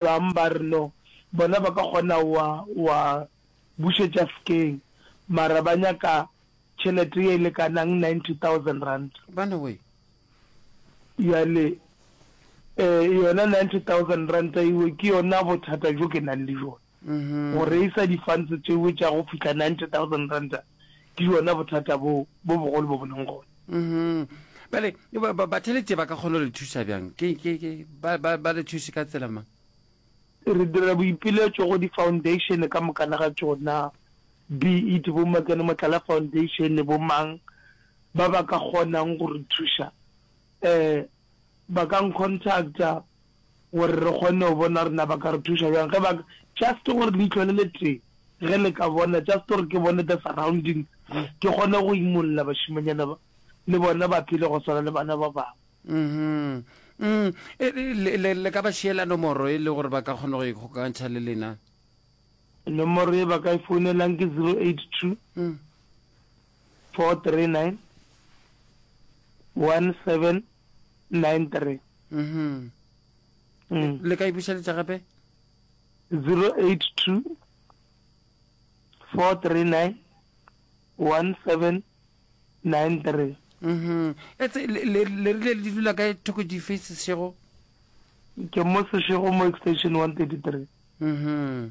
Bang ba re no, bona ba ka kgona wa wa bušetša fkeng, mara ba nyaka tšhelete ye e lekanang ninety thousand rand. Bana wee. Bjale eh yona ninety thousand ranta ewe ke yona bothata bjo ke nang le bjona. Go reisa di funds tšewe tša go fihla ninety thousand ranta Ke bjona bothata boo bo bogolo bo bo leng gona. Bjale bathelete ba ka kgona go le thuša bjang? Ba le thuše ka tsela mang? Re dira boipiletšo go difaundeišene ka mokana ga tšona, be it bo Makene Motlala Foundation le bo mang, ba ba ka kgonang go re thuša ba ka ncontacta gore re kgone go bona gore na ba ka re thuša bjang ge ba just gore leihlo le le tee ge le ka bona just gore ke bone the surrounding ke kgone go imolla bašimanyana ba le bona ba phele go swana le bana ba bangwe Mm-hmm. Mm. E, e, le, le ka ba šiela nomoro e le gore ba ka kgona go ikgokantšha le lena nomoro e ba ka e founelang ke zero eight two mm. four three nine one seven nine three mhm mm. le ka ibušeletša gape 082 439 1793 mhm etse le le le le dula ka thoko di faces shego ke mo se shego mo extension 133 mhm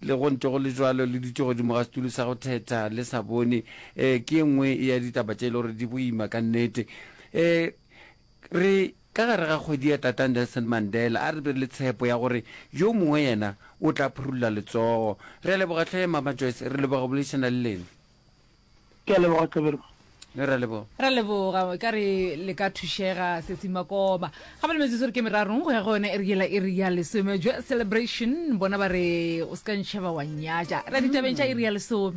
Le go ntše go le bjalo, le dutše godimo ga setulo sa go thetha le sa bone. Ee, ke e nngwe ya ditaba tše e le gore di boima ka nnete. Ee, re ka gare ga kgwedi ya Tata Nelson Mandela, a re be le tshepo ya gore yo mongwe yena o tla phurulla letsogo. Re a leboga Tlhahemama Joyce, re leboga go boledišana le lena. Ke a leboga Qeberwa. le ra leboga ra leboga ka re le ka thušega sesi makoba ga ba le metsotso re ke merarong go ya go yone e re yela e re ya lesome jwa celebration bona ba re o se ka ntšheba wa nyatša ra ditabeng tša e re ya lesome